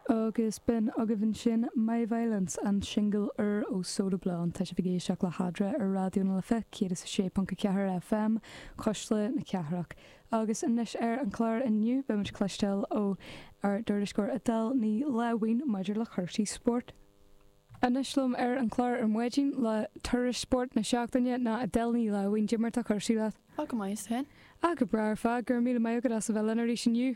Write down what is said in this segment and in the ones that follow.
Agus b'in agaibh ansin My Violence, an singil úr ó Soda Blonde. Tá sibh ag éisteacht le hAdra ar Raidió na Life 106.4 FM, Cuisle na Cathrach. Agus anois ar an chlár inniu, beimid ag cloisteáil ó ár dtuairisceoir Edel Ní Láimhín maidir le cúrsaí spóirt. Anois liom ar an chlár ar maidin le tuairisc spóirt na seachtaine ná Edel Ní Láimhín. Goidé mar atá cúrsaí leat? Tá go maith, is tú fhéin? Ah, go breá ar fad, go raibh míle maith agat as a bheith linn arís inniu.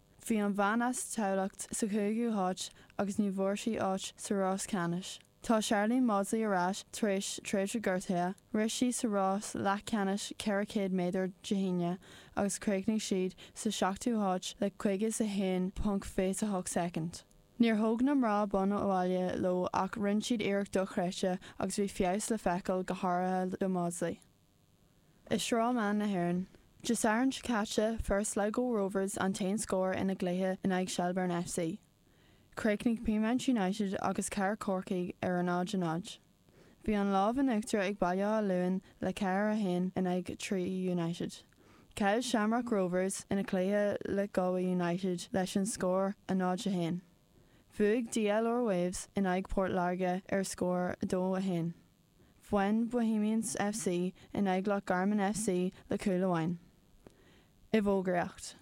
Bhí an bhean as Tamhlacht sa chúigiú háit agus ní bhfuair sí áit sa rás ceannais. Tá Sharlene Mawdsley ar ais tar éis tréimhse gortaithe. Rith sí sa rás leathcheannais 400 méadar Dé hAoine agus chríochnaigh siad sa seachtú háit le caoga is a haon ponc fiche a hocht soicind. Níor thóg na mná bonn abhaile leo ach rinne siad iarracht dochreidte agus bhí feabhas le feiceáil go háirithe do Mawdsley. I Sraith Mná na hÉireann. Dé Sathairn seo caite fuair Sligo Rovers an t-aon scór ina gcluiche in aghaidh Shelbourne F.C. Chríochnaigh Peamount United agus Cathair Chorcaí ar a 0-0. Bhí an lámh in uachtar ag Baile Átha Luain le 4 1 in aghaidh Treaty United. Chaill Shamrock Rovers ina gcluiche le Galway United leis an scór 0 1. Bhuaigh DLR Waves in aghaidh Port Láirge ar scór 2 1. Bhain Bohemians FC in aghaidh Loch Garman FC le cúl amháin. I bhfógraíocht.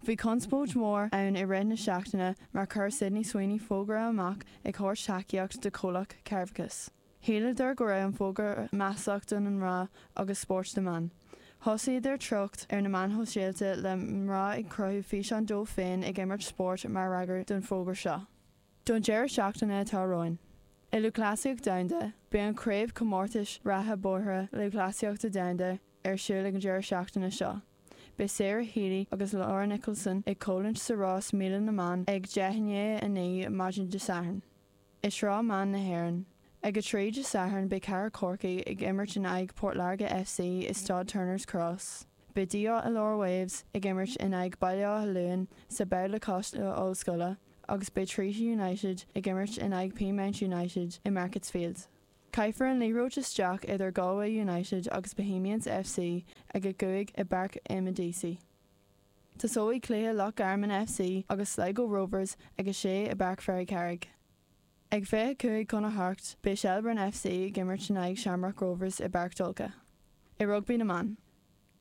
Bhí conspóid mhór ann i rith na seachtaine mar chuir Sydney Sweeney fógra amach ag thabhairt tacaíocht do chomhlacht cearrbhachais. Shíleadar go raibh an fógra maslach do na mná agus spóirt na mban. Thosaíodar treocht ar na meáin shóisialta le mná ag cruthú físeáin dóibh féin ag imirt spóirt mar fhreagra don fógra seo. Don deireadh seachtaine atá romhainn, i Lúthchleasaíocht Domhanda, beidh an Craobhchomórtas Reatha Bóithre Lúthchleasaíochta Domhanda ar siúl ag an deireadh seachtaine seo. Beidh Sarah Healy agus Laura Nicholson ag comhlint sa rás míle na mban ag deich i ndiaidh a naoi maidin Dé Sathairn, i Sraith Mná na hÉireann. Ag a trí Dé Sathairn beidh Cathair Chorcaí ag imirt in aghaidh Port Láirge FC i Stáid Turners Cross. Beidh DLR Waves ag imirt in aghaidh Baile Átha Luain sa Bhabhla Coláiste Ollscoile agus beidh Treaty United ag imirt in aghaidh Peamount United i Markets Field. Caithfear an liathróid isteach idir Galway United agus Bohemians FC ag a cúig i bPáirc Eamonn Deacy. Tosóidh cluiche Loch Garman FC agus Sligo Rovers ag a sé i bPáirc Ferrycarrig. Ag 25 chun a 8 beidh Shelbourne FC ag imirt in aghaidh Shamrock Rovers i bPáirc Tolka. I rugbaí na mban.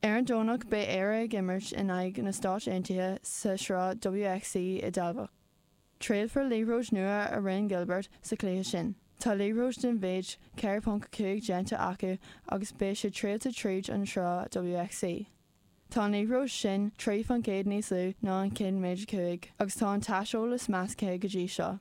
Ar an Domhnach beidh Éire ag imirt in aghaidh na Stáit Aontaithe sa sraith WXV i dTamhlacht. Triailfear liathróid nua a rinne Gilbert sa chluiche sin. Tá liathróid den mhéid 4.5 déanta acu agus beidh sé triailte tríd an sraith WXV. Tá an liathróid sin 3 faoin gcéad níos lú ná an cinn méid a 5 agus tá an t-aiseolas measctha go dtí seo.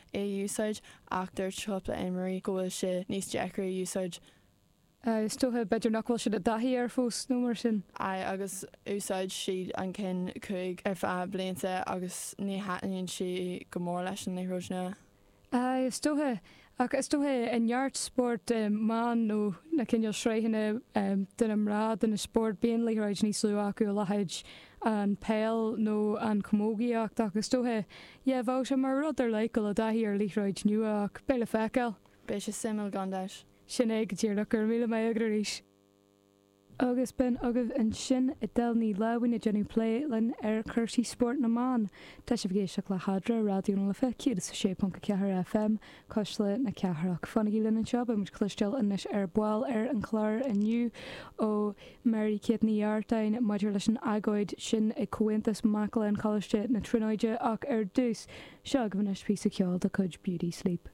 é a úsáid, ach dúirt cúpla imreoirí go bhfuil sé níos deacra a úsáid. Aye, is dócha. B'fhéidir nach bhfuil siad i dtaithí air fós nó mar sin. Aye, agus úsáid siad an cinn cúig ar feadh blianta agus ní thaitníonn sé go mór leis an liathróid nua. Aye, is dócha. Ach is dócha i neart spóirt mban nó na cineál sraitheanna de na mná de na spóirt bíonn liathróid níos lú acu a leithéid an peil nó an chamógaíocht ach is dócha Yeah, bheadh sé mar rud ar leith dul i dtaithí ar liathróid nua ach beidh le feiceáil. Beidh sé suimiúil gan dabht. Sin é go díreach, gura míle maith agat arís. Agus b'in agaibh ansin Edel Ní Láimhín ag déanamh plé linn ar chúrsaí spóirt na mban. Tá sibh ag éisteacht le hAdra, Raidió na Life 106.4 FM, Cuisle na Cathrach. Fanaigí linn anseo, beidh muid cloisteáil anois ar ball ar an chlár inniu ó Mary Kate Ní Artáin maidir leis an agóid sin ag Comhaontas Mac Léinn Choláiste na Tríonóide ach ar dtús, seo agaibh anois píosa ceoil de chuid Beauty Sleep.